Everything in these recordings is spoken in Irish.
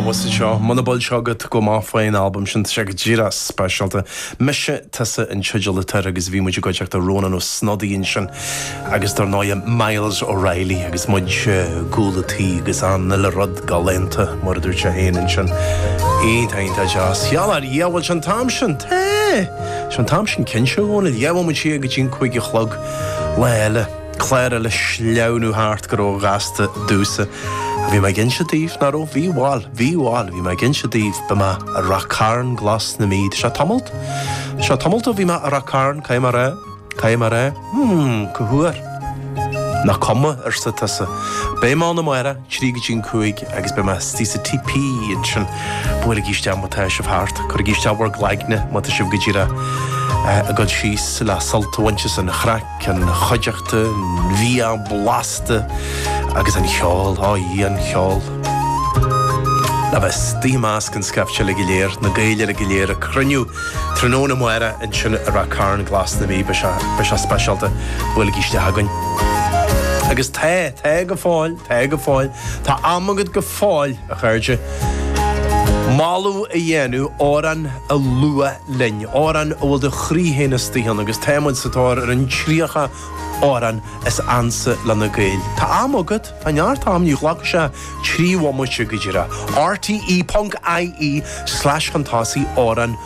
Abhus anseo, muna bhfuil a fhios agat go maith faoin albam sin, tá sé go díreach speisialta. Mise, Tusa an teideal atá air agus bhí muid i gcuideachta Rónán Ó Snodaigh ansin agus dár ndóighe Myles O'Reilly agus muid i gcúl a' tí agus an uile rud galánta mar a dúirt sé féin ansin. Iontach, iontach deas. Cheal ár an bhfuil sé an t-am sin? Tá sé an t-am sin cinnte a Dhónaill, gheibheamar siar go dtí an cúig a chlog lá eile. Tá na laethe ag sleamhnú thart go ró-ghasta domhsa. Bhí mé ag inse daoibh, nach raibh? Bhí, bhail, bhí, bhail, bhí mé ag inse daoibh, beidh mé i Rath Cairn glas na Mí, tá tamalt, tá tamalt ó bhí mé i Rath Cairn, caidh mar é? caidh mar é? hmm, cá huair? Nach cuma, arsa tusa. Beidh mé ann amárach, trí go dtí an cúig, agus beidh mé istigh sa TP ansin. Buailigí isteach má tá sibh thart, cuirigí isteach bhur gcloigne má tá sibh go díreach ag dul síos le sult a bhaint as an chraic. An chuideachta, an bhia blasta agus an cheol, ó a Dhia an cheol. Le bheith istigh i measc an scaifte uilig go léir, na Gaeil uilig go léir ag cruinniú tráthnóna amárach ansin i Rath Cairn Glas na Mí, beidh sé speisialta, buailigí isteach chugainn. Agus tá, tá go fóill, tá go fóill, tá am agat go fóill a chairde, moladh a dhéanamh, amhrán a lua, linn, amhrán a bhfuil do chroí féin istigh ann agus tá muid sa tóir ar an 30 amhrán is ansa leis na Gaeil. Tá am agat, tá neart am, ní ghlacfaidh sé trí bhomaite go díreach. rte.ie/chuntosaigh amhráin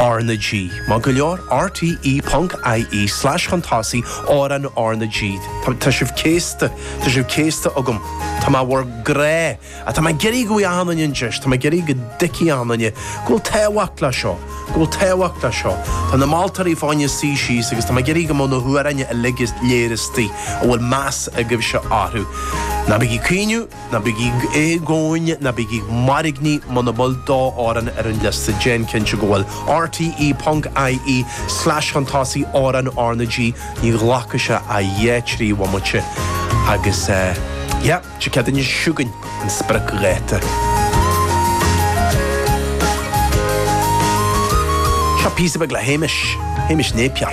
R na G. Maith go leor. rte.ie/chuntosaigh amhráin R na G. Tá sibh céasta, tá sibh céasta agam. Tá mé bhur gcrá. Ach tá mé ag iarraidh go bhfaighidh achan duine an deis, tá mé ag iarraidh go dtuigfidh achan duine go bhfuil tábhacht leis seo, go bhfuil tábhacht leis seo. Tá na moltóirí fá choinne suí síos agus tá mé ag iarraidh go mbeadh na hamhráin uilig go léir istigh a bhfuil meas agaibhse orthu. Ná bígí ag caoineadh, ná bígí ag éagaoin, ná bígí ag mairgnigh, muna bhfuil d'amhrán ar an liosta déan cinnte go bhfuil. rte ponc ie slash chun tosaigh amhráin R na G, ní ghlacfaidh sé ach dhá trí bhomaite agus eh. Seo ag teacht anois chugainn an spriocdháta. Seo píosa beag le Hamish, Hamish Napier.